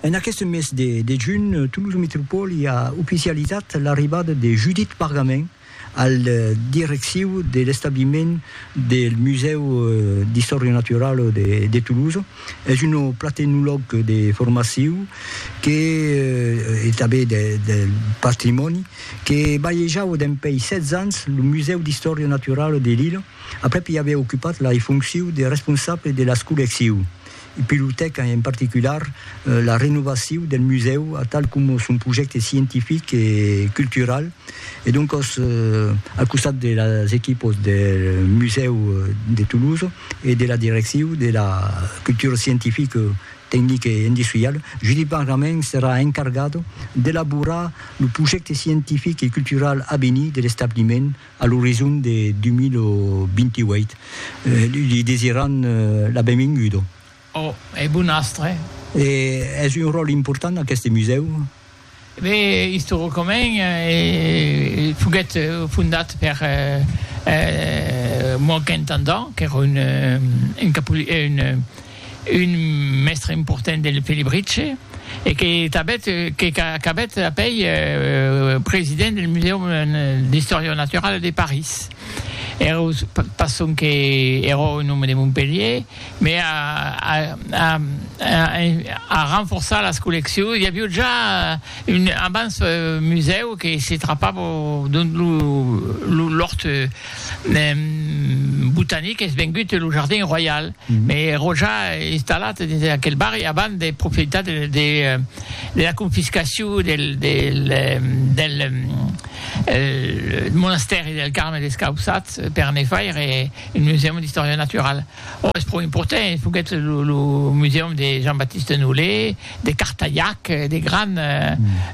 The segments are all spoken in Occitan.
En aqueste mes de de junh, Toulouse Métropole a oficializat l'arribada de Judith Pargamin al direcciu de l'establiment del Musèu d'Istòria Naturala de de Toulouse. Es un platenolog de formaciu que e tanben de de patrimòni que balhejava dempèi 16 ans lo Musèu d'Istòria Naturala de Lila, Aprèp i aviá ocupat la fonciu de responsable de las collecciu. I pilotèc en particular la renovaciu del musèu atal coma son projècte scientific e cultural e doncòs al costat de las equipos del musèu de Toulouse e de la direcciu de la cultura scientifica, tecnica e industriala, Judit Bargament serà encargat d'elaborar lo projècte scientific e cultural avenir de l'establiment a l'orizon de 2028. Li desiran la benvinguda. Ò, e bon astre. E es un ròl important aqueste musèu? Be, istoricament, foguèt fondat per Moaquin Tandant, qu'èra un un mèstre important del Felibritge e que tanbèt que qu'acabèt apèi president del Museum d'Istòria Naturala de París. Ero pas sonque ero un òme de Montpelhier, me a a a a renforçar las colleccions, i avió ja un abans musèu que se trapava dont lo lo l'òrt, botanic es vengut lo jardin royal me ero ja installat dins aquel barri avant de profitar de la confiscacion del monastèri del Carme Descausats per ne faire un musèum d'istòria naturala. Ò, es pro important, es foguèt lo musèum de Jean-Baptiste Nolé, de Cartayac, de grand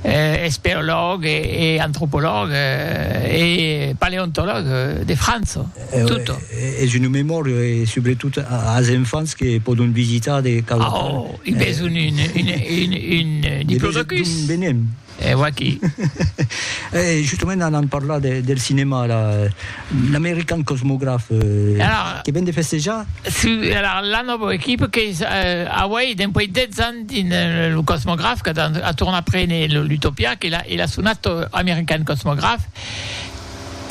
esperològ e antropològ e paleontològ de França, tot. Es una memòria e subretot as enfants que pòdon visitar de cada part. Ò, i besonh un diplodocus. Benem. E vaquí. E justament anam parlar del cinèma ara, l'American Cosmograph que ven de festejar. Si, alara la nòva equipa qu'es auei dempuèi 10 ans dins lo Cosmograph qu'a a tornar prene l'Utopia que el a sonat American Cosmograph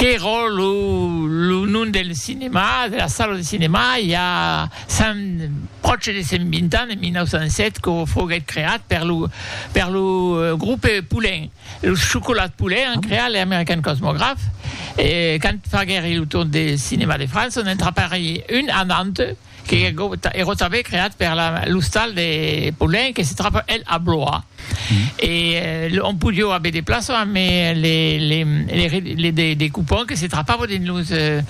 qu'èra lo nom del cinèma, de la sala de cinèma, i a Sens pròche de 120 ans, en 1907, que foguèt creat per lo per lo grupe Poulin, los Chocolats Poulin an creat le American Cosmograph, e quand faguèri lo tour de cinèma de França, on entrapèri un anant que ero tanben creat per la l'ostal de Poulin que se trapa el a Blois, e on podió aver de plaças, amé les les les les des des coupons que se trapava dins los.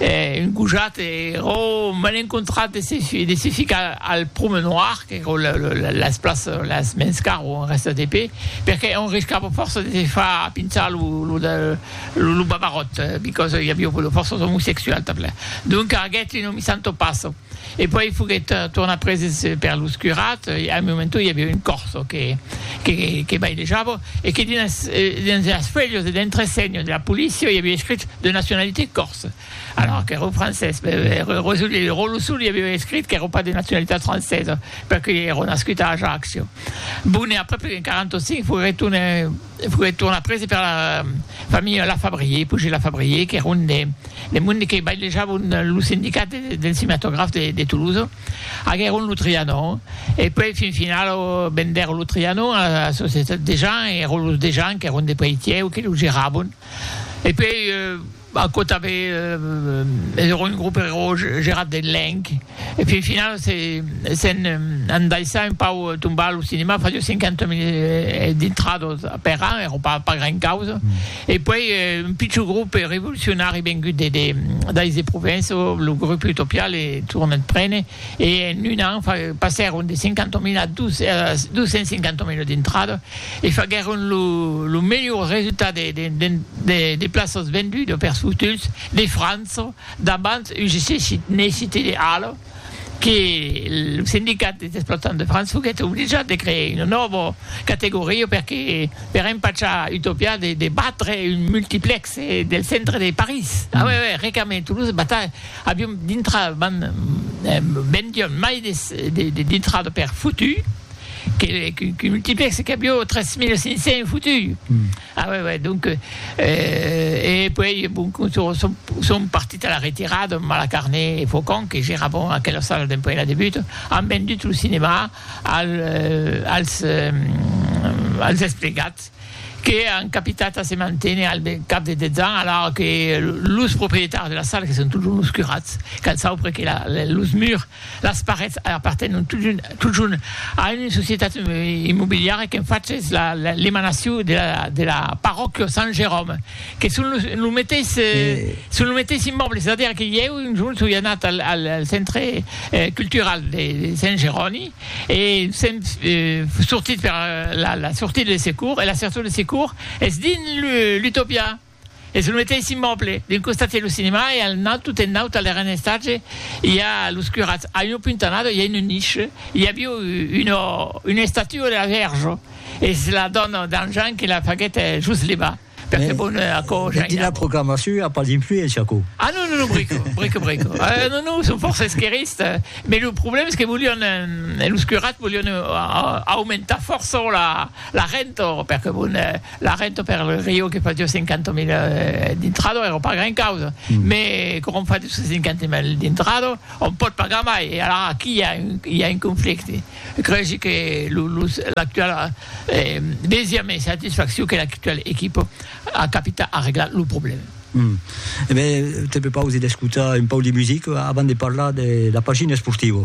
E un gojat ero me l'ai encontrat de se de se ficar al promenoir, qu'ero la la las places las mens car o un rèsta de pe, perque on riscava fòrça de se far pinchar lo lo de lo babaròt, because i aviá fòrça omosexuals tanpla. Donca aguèt un omissant o passo. E puèi foguèt tornat preses per los curats e al momento i aviá un corso que bailejava e que dins las fuèlhas de l'entresenho de la polícia i aviá escrit de nacionalitat corse alora qu'èra francés Rosolí le Rolosolí aviá escrit qu'èra pas de nacionalitat francesa perque i èra nascut a Ajaccio. Bon e aprèp en 45 foguèt tornat E fuguèt tornat prese per la familha Lafabrier, Pujé Lafabrier, qu'èra un des monde que bailejavon lo sindicat del cinematograf de Toulouse. Aguèron lo Trianon e puèi fin final vendèron lo Trianon a la societat Dejean e èron los Dejean qu'èron de Peitièu que lo geravon e puèi Aquò tanben es era un grup eró gerat de Lenk, e fin finau se'n andaissà un pau tombar lo cinema, fasió 50 mil dintrados per an, eró pas gran causa, e puèi un pichon grup revolucionari vengut de dais de Provença, lo grup Utopia, le tornèt prene, e en un an passèron de 50 mil a 250 mil dintrados. e faguèron lo melhor resultat de plaças vendudas per fotutz de França davant UGC Cité de Halle que lo sindicat des explotants de França foguèt obligat de crear una nòva categoria perque per empachar Utopia de batre un multiplex del centre de París a uèi uèi recament Toulouse bata avion dintrada vendion mai de dintrada per fotutz. Que'l multiplèxe qu'a bio 3500 fotu. Ah ouais ouais donc euh e puèi bon son partit a la retirada amb Malacarné e Faucon que geravan aquela sala dempuèi la debut an vendut lo cinema als als esplegats que an capitat a se manténer al cap de 10 ans alara que los proprietaris de la sala que son totjorn los curats qu'an saupre que los murs Las parets apartenon totjorn a una societat immobiliara qu'en faches l'emanacion de la parròquia Sant Jeròme, que son lo meteis immòble, es a dire que ieu un jorn soi anat al centre cultural de Sant Jeroni e sèm sortit per la sortida de secours e la sortida de secours es dins l'Utopia. Es lo meteis immòble, d'un costat i a lo cinema e al naut, tot en naut, al darren estatge, i a los curats. A una puntanada i a una niche, i avió una estatua de la Vèrge. Es la dòna d'An Jean que la faguèt just levar, per fer bon aquò Jean. Dins la proclamacion i a pas d'influéncia aquò? Ah non, non, non, brico, brico, brico. Ah non, non, son fòrça esquerrista, mai lo problèma es que volián, los curats volián aumentar fòrça la renta, per que bon, La renta per lo rio que fasió 50.000 d'intrado èra pas gran causa, mès quand òm fa 250.000 d'intrado, òm pòt pagar mai e alara aquí i a un conflicte. Cregi que l'actual desia mai satisfaccion que l'actual equipa a capita arreglar lo problèma. E ben, te prepausi d'escotar un pauc de musica avant de parlar de la pagina esportiva.